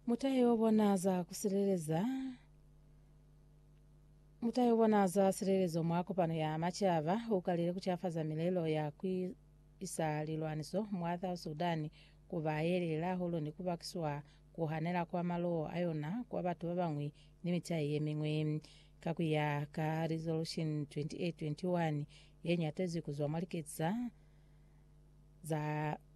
Mutahe wo bona za ku sileleza mutahe wo bona za silelezo mwa kopano ya macaba u kalile ku cafaza milelo ya ku isa lilwaniso mwa South Sudan ku ba ye lela hulu ni ku bakiswa ku hanela kwa maloo a yona kwa batu ba bañwi ni mitahe ye miñwi. Ka ku ya ka Resolution 2821 ye ñatezwi ku zwa mwa liketsi za za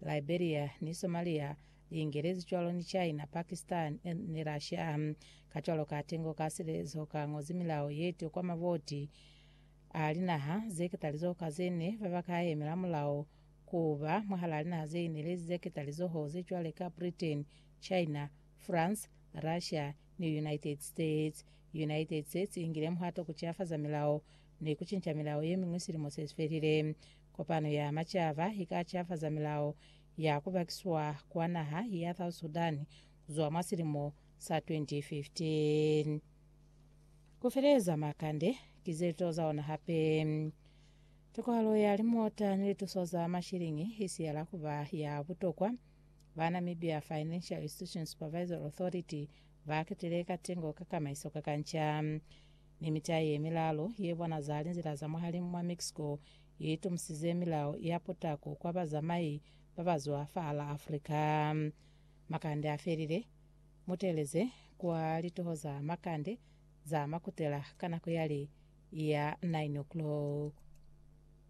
Liberia ni Somalia li ingelezi cwalo ni China, Pakistan ni Russia. Kacwalo ka tengo ka silezo ka ñozi milao ye to kwa mavoti a linaha ze ketalizoho ka ze ne ba ba ka yemela mulao ku ba mwahalaa linaha ze inelezi ze ketalizoho ze cwale ka Britain, China, France, Russia ni United States. United States i ngile muhato ku cilafaza milao ni ku cinca milao ye miñwi silimo se si felile. Kopano ya Macaba i ka ciafaza milao ya ku bakiswa kwa naha ya South Sudan ku zwa mwa silimo sa 2015. Ku feleza makande ki ze to za ona hape. Tokohalo ya limota ni lituso za mashiliñi i siyela ku ba ya butokwa. Ba Namibia Financial Institution Supervisory Authority ba ketile katengo ka kamaiso ka kanca. ni mitai ye milalu ye bonaza linzila za mwahalimu mwa Mexico ye itumusizze milao ya putako kwa bazamai ba ba zwa fahala Africa. Makande a felile, muteleze kwa litoho za makande za makutela ka nako yali ya 9 o'clock.